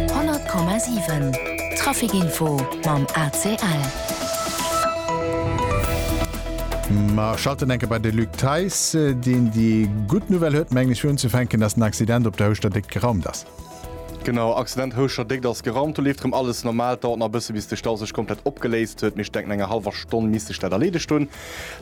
100,7 Trafic Info mam ACL. Mer schalten enke bei de Luc Theis, deen déi gutt Nouvelle huet, mengen ech, fir unzefänken, dass den Accident op der Houschter Déckt geraumt ass. Genau, Accident Houschter Déckt ass geraumt. Do leeft erëm alles normal. Et dauert nach e bësse bis de Stau sech komplett opgeléist huet, mee ech denken, no enger hallwer Stonn misst sech dat erleedegt hunn.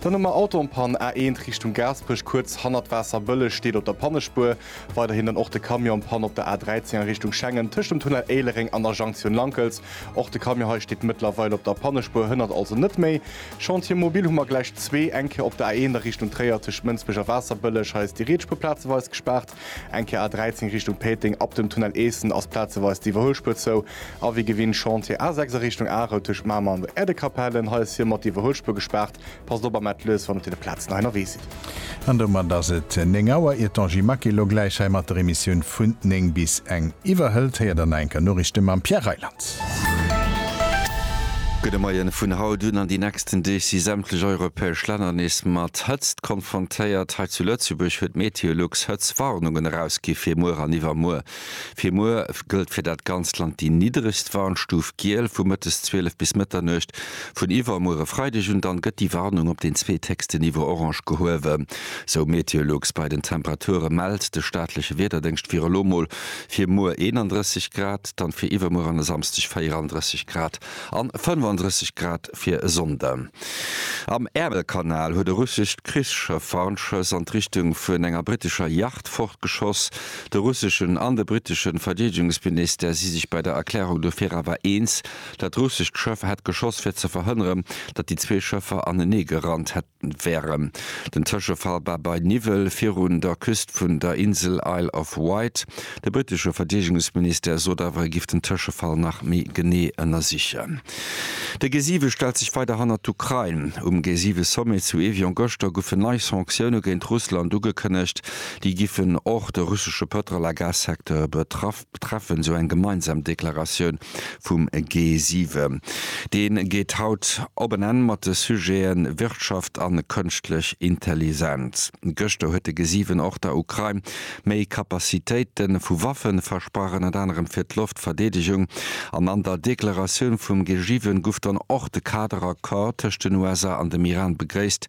Dann hu mer Autoen-Pann, A1 Richtung Gaasperech, kuerz hannert Waasserbëlleg steet op der Pannespuer. Weiderhin dann och de Camion Panne op der A 13 a Richtung Schengen tëscht dem Tunnel Éilereng an der Junction Lankels. Och de Camion hei steet mëttlerweil op der Pannespuer, hënnert also net méi. Chantier mobil hu mer gläich zwee, eng Kéier op der A 1 a Richtung Tréier tëscht Mënsbech a Waasserbëlleg. Hei ass déi Rietspur plazeweis gespaart. Eng Kéier A 13 Richtung Péiteng ab dem Tunnel Eessen ass plazeweis d'Iwwerhuelspur zou. A wéi gewinnt Chantier A 6 a Richtung Arel tëscht Mamer an der Äerdekapellen. Hei ass hie mat d'Iwwerhuelspur gespaart. Passt op a maat lues wann op den Platzen hei nerwee sidd. An domat ass et 9 Auer. Ier d'Angie Maquet lo gläich hei mat der Emissioun vun 9 bis eng iwwerhëlt, héiert der naenker Noriichte mam Pierre Reyland. Gudde Moien, Vun haut un an déi nächsten Deeg si sämtlech europäesch Länner nees mat Hëtzt konfrontéiert. Hei zu Lëtzebuerg huet Meteolux Hëtztwarnungen erausgi fir muer an iwwermuer. Fir muer gëllt fir dat ganzt Land déi niddregst Warnstuf Giel, vu mëttes 12 bis Mëtternuecht. Vun iwwermuere Freideg un dann gëtt déi Warnung op den zweethéchste Niveau orange gehuewe, sou Meteolux. Bei den Temperature mellt de staatleche Wiederdéngscht fir elo mol fir muer 31 Grad, dann fir iwwermuer an e Samsdeg 34 Grad an 35 Grad. fir e Sonnde. Am Äermelkanal huet e russescht Krichsschëff Warnschëss an d'Richtung vun enger brittescher Yacht fortgeschoss. De russeschen an de brittesche Verdeedegungsministère si sech bei der Erklärung dofir awer eens, dat russescht Schëff hätt geschoss fir ze verhënneren, datt déi zwee Schëffer aneneegerannt hätten. Wärem den Tëschefall war bei Niwwel virun der Küst vun der Insel Isle of Wight. De britesche Verdeedegungsministère sot awer, e giff den Tëschefall nach méi genee ënnersichen. De G7 stellt sech weider hannert d'Ukrain. Um G7-Sommet zu Evian gëschter goufen nei Sanktioune géint Russland ugekënnegt. Déi giffen och de russesche Pëtrol a Gas-Secteur betraff. betreffen esou eng gemeinsam Deklaratioun vum G7. Dee geet haut op en Enn mat de Sujete Wirtschaft a Kënschtlech Intellisenz. Gëschter huet de G7 och der Ukrain méi Kapazitéite vu Waffe versprach, ënnert anerem fir d'Loftverdeedegung. An an der Deklaratioun vum G7 gouf dann och de Kader-Accord tëscht den USA an dem Iran begréisst,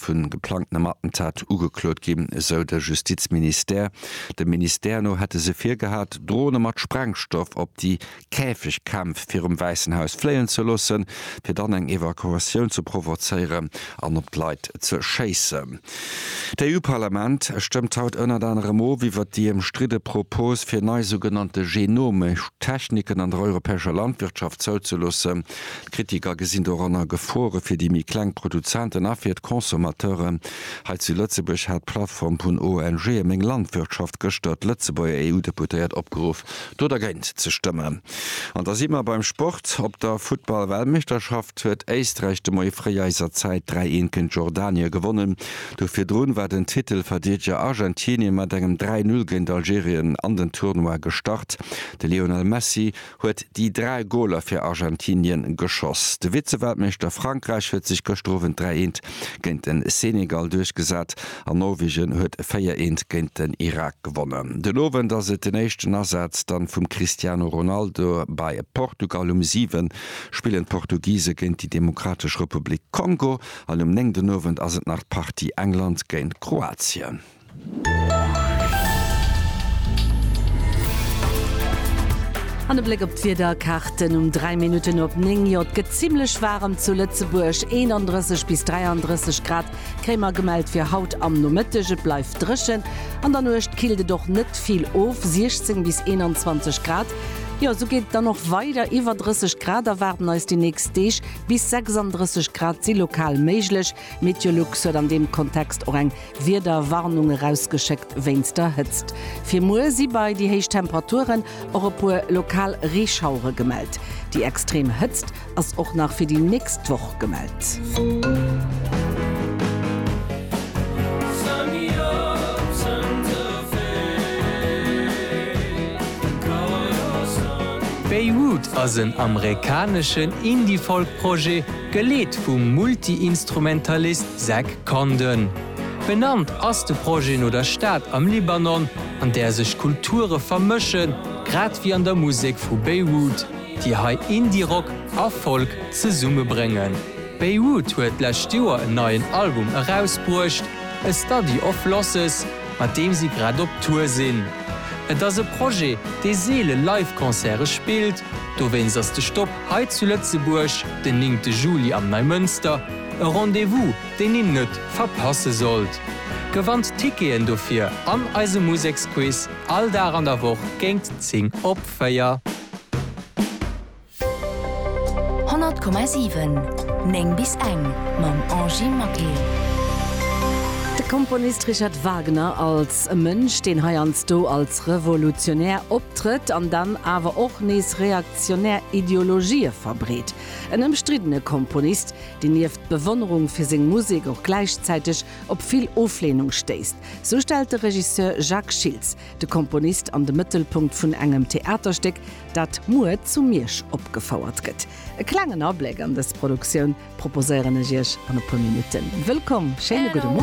vun geplangtenem Attentat ugeklot ginn, esou de Justizministère. Dem Ministère no hätte se virgehat, Drone mat Sprengstoff op déi Käfegkämpf virum Wäissen Haus fléien ze loossen, fir dann eng Evakuatioun ze provozéieren an op d'Leit ze schéissen. D'EU-Parlament stëmmt haut ënnert anerem of iwwert déi ëmstridde Propos, fir nei sougenannte genomisch Techniken an der europäescher Landwirtschaft zouzeloossen. D'Kritiker gesinn doranner Gefore fir déi méi kleng Produzenten a fir d'Consommateuren. Hei zu Lëtzebuerg hat d'Plattform vun ONGe Meng Landwirtschaft gëschter d'Lëtzebuerger EU-Deputéiert opgeruff, do dergéint ze stëmmen. An da si mer beim Sport. Op der Futtball-Weltmeeschterschaft huet Éisträich de Moie fréi eiser Zäit 3 een géint Jordanien gewonnen. Do virdrun war den Titelverdiedeger Argentinien mat engem 3 Null géint Algerien an den Tournoi gestart. De Lionel Messi huet déi dräi Goler fir Argentinien geschoss. De Vize-Weltmeeschter Frankräich huet sech gëschter Owend 3 eent géint den Senegal duerchgesat an Norwegen huet 4 eent géint den Irak gewonnen. Den Owend ass et den éischten Asaz dann vum Cristiano Ronaldo bei Portugal. Um 7 spillen d'Portugise géint déi Demokratesch Republik Kongo an um 9 den Owend ass et nach d'Partie England géint Kroatien. An e Bléck op d'Wiederkaarten um 3 Minutten op 9. Jo, et gëtt zimmlech waarem zu Lëtzebuerg, 31 bis 33 Grad kréie mer gemellt fir haut am Nomëtteg. Et bleift dréchen, an der Nuecht killt et och net vill of, 16 bis 21 Grad. Jo, esou geet et dann och weider, iwwer 30 Grad erwaarden eis déi nächst Deeg, bis 36 Grad si lokal méiglech. Meteolux huet an deem Kontext och eng Wiederwarnung erausgeschéckt wéinst der Hëtzt. Fir muer si bei déi héich Temperaturen och e puer lokal Reeschauere gemellt. Déi extrem Hëtzt ass och nach fir déi nächst Woch gemellt. Beirut ass en amerikaneschen Indie-Folk-Projet. Geleet vum Multiinstrumentalist Zach Condon. Benannt ass de Projet no der Stad am Libanon, an där sech Kulture vermëschen, grad wéi an der Musek vu Beirut, déi hei Indie-Rock a Folk zesummebréngen. Beirut huet d'lescht Joer en neien Album erausbruecht, A Study of Losses, mat deem si grad op Tour sinn. Et ass e Projet, dee seele Live-Concerte spillt, dowéinst ass de Stopp Hei zu Lëtzebuerg den néngte Juli am Neimënster, e Rendez-vous deen een net verpasse sollt. Gewannt d'Ticketen dofir an eise Museksquiz all Dag an der Woch géint 10 op 4. 100,7 9 bis eng mam Angy Maquet. De Komponist Richard Wagner als e Mënsch, deen heiansdo als Revolutionär optrëtt an dann awer och nees reaktionär. reaktionär Ideologië verbreet. En ëmstriddene Komponist, deen nieft Bewonnerung fir seng Musek och gläichzäiteg op vill Ofleenung stéisst. Sou stellt de Regisseur Jacques Schiltz de Komponist an de Mëttelpunkt vun engem Theaterstéck, dat muer zu Miersch opgefouert gëtt. E klengen Abléck an dës Produktioun proposéieren ech Iech an e puer Minutten. Wëllkomm, schéine gudde Moien.